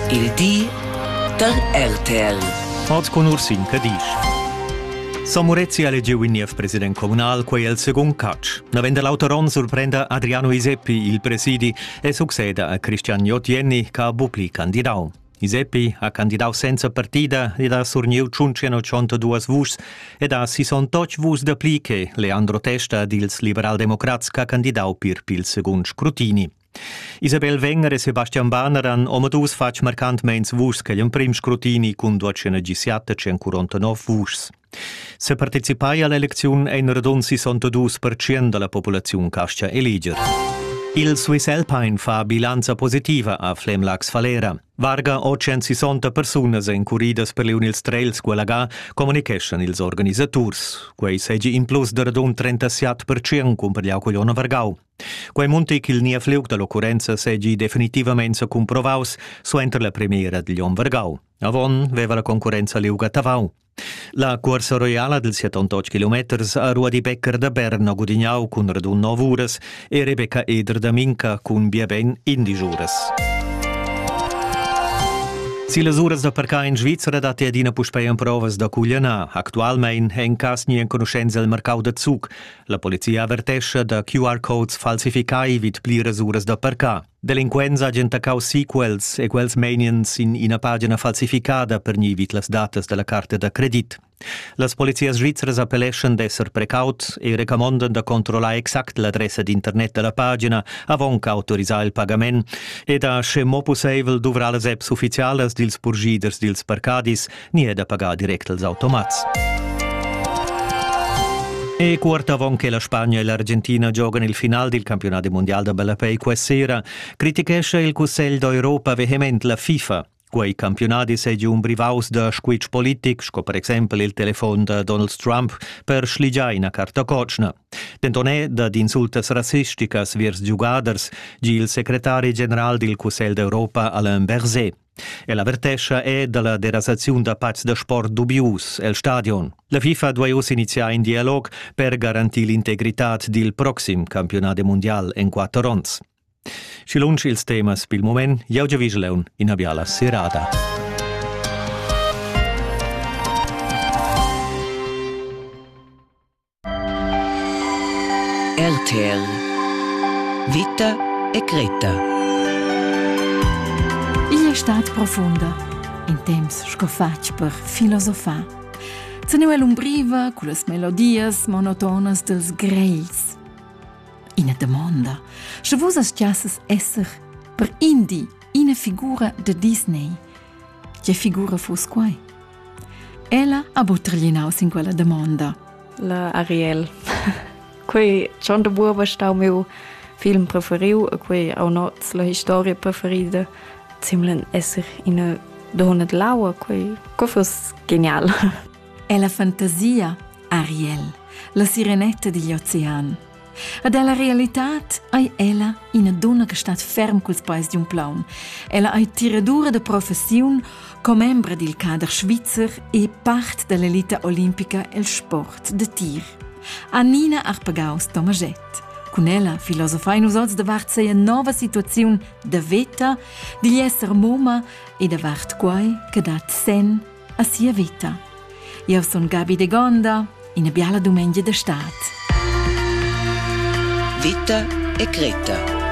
Il di da RTL. Oz con Ursin Cadisch. Samurezzi ha elegiu in niev president communal, quei el secund catch. Naven da l'auter onn surprenda Adriano Iseppi il presidi e succeda a Cristian Jottienni che ha bupli candidau. Iseppi ha candidau senza partida ed ha surniu 182 vuschs ed ha 68 vuschs da pli che Leandro Testa dils liberaldemocrats che ha candidau pir pil secund scrutini. Isabel Wenger e Sebastian Banner han omadus fatg marcantmeins vuschs che l'emprim scrutini cun duatschena gisiatta tschencurontanov vuschs. Se participai all'eleziun ein radund 62% dalla populaziun cascha eliger. Il Swiss Alpine fa bilanza positiva a Flemlax Falera. Varga 860 persunas encuridas per Leonils Trails Gualaga comunicheschan ils organisaturs. Quei segi in plus da radund 37% cun per Vargau. Quei munti ch'il niev liug dall'occurrenza seigi definitivamain secumprovaus suenter la premiera digl onn vargau. Avon veva la concurrenza liug a Tavau. La cuorsa roiala dels 78 kilometers ha Ruadi Becker da Berna gudignau cun radun 9 uras e Rebecca Eder da Minca cun biaben indisch uras. Si las uras da parcar in Svizzera datti adina puspei emprovas da cuglianar. Actualmein è in cas ni enconuschenza il marcau da Zug. La polizia avertescha da QR-codes falsificai vid pliras uras da parcar. Delinquents hajan taccau sequels e quels meiniens in ina pagina falsificada per ni vid las datas dalla carta da credit. Las polizias svizras appelleschan d'esser precaut e recamondan da controllar exact l'adressa d'internet dalla pagina avon qu'autorisar il pagament e da, sche mo pusseivel, duvrar las apps ufficialas dils purschiders dils parcadis ni è da pagar direct als automats. E quart avon che la Spagna e l'Argentina giogan il final dil campionat mundial da ballapei questa sera, critichescha il Cussegl d'Europa vehement la FIFA. Quei campionadi seigi un brivaus da squitsch politic, sco per exempel il telefon da Donald Trump per schligiar ina carta cotschna. Denton è dad insultas rassisticas viers giugaders, gi il secretari general dil Cussegl d'Europa Alain Berset. El avertescha è dalla derasaziun da pazs da sport dubius el stadion. La FIFA duai uss iniziar in dialog per garantir l'integritad dil proxim campionat mundial en quatter onns. Schi lunsch ils temas pil moment, jau Vigeleun, ina biala serada. RTL Vita e Greta Igl è stat profunda, in temps sco fatg per filosofar. Teneva l'umbriva con las melodias monotonas dels grels. Ina domanda, sche vus astiasses esser per indi ina figura de Disney, Tge figura fuss quai? Ella ha buc terlinau sin quella damonda. La Ariel. quei John de Buoba stau miu film preferiu e quei au noz la historia preferida zimlen esser ina donna de laua, quei co fuss genial. È la fantasia Ariel, la sirenetta digl ocean, Ad ella realitad ei ella ina donna che stat ferm culs peis di un plaun. Ella ei tiradura de professiun, commembra dil cader svizzer e part dell'elita olimpica el sport de tir. Annina Arpagaus Tomaget. Cun ella filosofain nus oz davart seia nova situaziun da veta, digl esser moma e davart quai che dat sen a sia vita. Io sun Gabi de Gonda, ina biala dumengia de stad. Vita e Greta